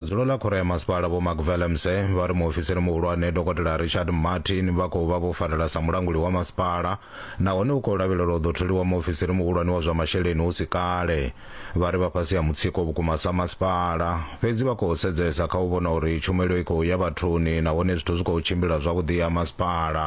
Dzulo ḽa khoro ya masipala Vho Mark Vellemse vha ri muofisiri muhulwane Dokotela Richard Martin vha khou vha vho farela sa mulanguli wa masipala nahone u khou lavhelelwa u ḓo tholiwa muofisiri muhulwane wa zwa masheleni hu si kale. Vha ri vha fhasi ha mutsiko vhukuma sa masipala, fhedzi vha khou sedzesa kha u vhona uri tshumelo i khou ya vhathuni nahone zwithu zwi khou tshimbila zwavhuḓi ha masipala.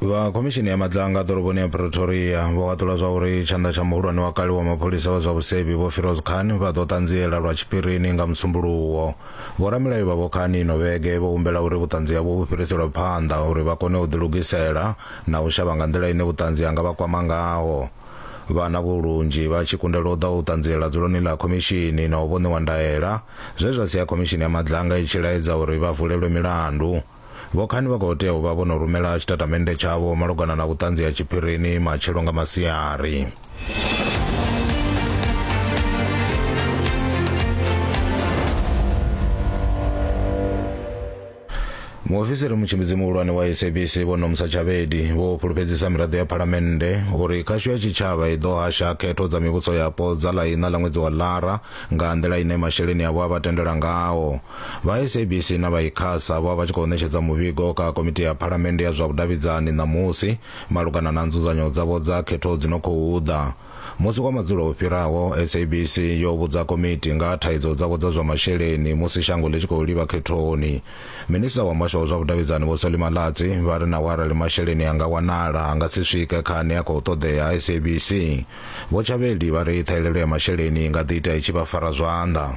vha khomishini ya madlanga ḓoroboni ya pretoria vho haṱula zwa uri tshanḓa tsha muhulwane wa kale wa mapholisa wa zwa vhusevhi vho firoz khan vha ḓo ṱanziela lwa tshiphirini nga musumbuluwo vhoramilayo vha vho khan ino vhege vho humbela uri vhuṱanzi havho vhu fhiriselwe phanḓa uri vha kone u ḓilugisela na u shavha nga nḓila ine vhuṱanzi ha nga vha kwama ngaho vhana vho lunzhi vha tshi kundelwa u ḓa u ṱanziela dzuloni ḽa khomishini na u vho ṋewa ndaela zwe zwa sia khomishini ya madlanga i tshi laedza uri vha vulelwe milandu Vhokhani vha khou tea u vha vho no rumela tshitatamennde tshavho malugana na vhuṱanzi ha tshiphirini matshelo nga masiari. muofisiri mutshimbidzi muhulwane wa sabc vho nomsa tshavhedi vho fhulufhedzisa miraḓo ya phalamennde uri khasho ya tshitshavha i ḓo hasha khetho dza mivhuso yapo dza ḽa iṋa ḽa ṅwedzi wa lara nga nḓila ine masheleni avho a vha tendela ngao Vha SABC na vha Icasa vho vha tshi khou ṋetshedza muvhigo kha Komiti ya Phalamennde ya zwa Vhudavhidzani ṋamusi malugana na nzudzanyo dzavho dza khetho dzi no khou ḓa. Musi wa madzulo u fhiraho, SABC yo vhudza komiti nga ha thaidzo dzavho dza zwa masheleni musi shango ḽi tshi khou livha khethoni. Minisita wa Muhasho wa zwa Vhudavhidzani Vho Solly Malatsi vha ri naho arali masheleni a nga wanala a nga si swike kha ane a khou ṱoḓea SABC. Vho Tshavheli vha ri ṱhahelelo ya masheleni i nga ḓi ita i tshi vha fara zwanḓa.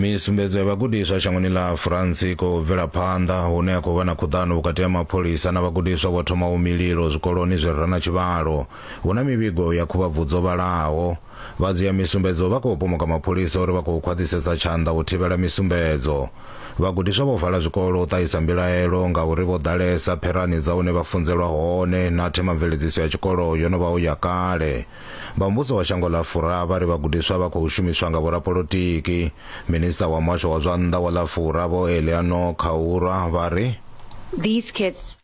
misumbedzo ya vhagudiswa shangoni ḽa france khou bvela phanḓa hune ha khou vha na khuḓano vhukati ha mapholisa na vhagudiswa vho thomaho mililo zwikoloni zwi re na tshivhalo hu na mivhigo ya khuvhabvudzo vhalaho Vha dzhia misumbedzo vha khou pomoka mapholisa uri vha khou khwaṱhisedza tshanḓa u thivhela misumbedzo. Vhagudiswa vho vala zwikolo u ṱahisa mbilaelo ngauri vho ḓalesa pherani dza hune vha funzelwa hone na themamveledziso ya tshikolo yo no vha u ya kale. Vha muvhuso wa shango ḽa Fura vha ri vhagudiswa vha khou shumiswa nga vhorapolotiki. Minisiṱa wa muhasho wa zwa nnḓa wa ḽa Fura Vho Eleanor Khaura vha ri. These kids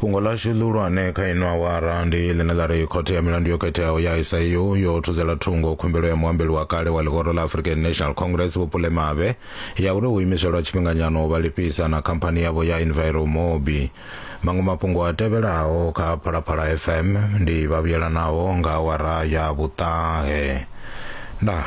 fhungo ḽashu ḽihulwane kha ino awara ndi ḽine ḽa ri khothe ya milandu yo khetheaho ya SIU yo thudzela thungo khumbelo ya muambeli wa kale wa ḽihoro ḽa African National Congress Vhupule Mavhe ya uri u imiswe lwa tshifhinganyana u vha lifhisa na khamphani yavho ya Enviromobi. Maṅwe mafhungo a tevhelaho kha Phalaphala FM ndi vhavhuyelanaho nga awara ya vhuṱahe. Ndaa.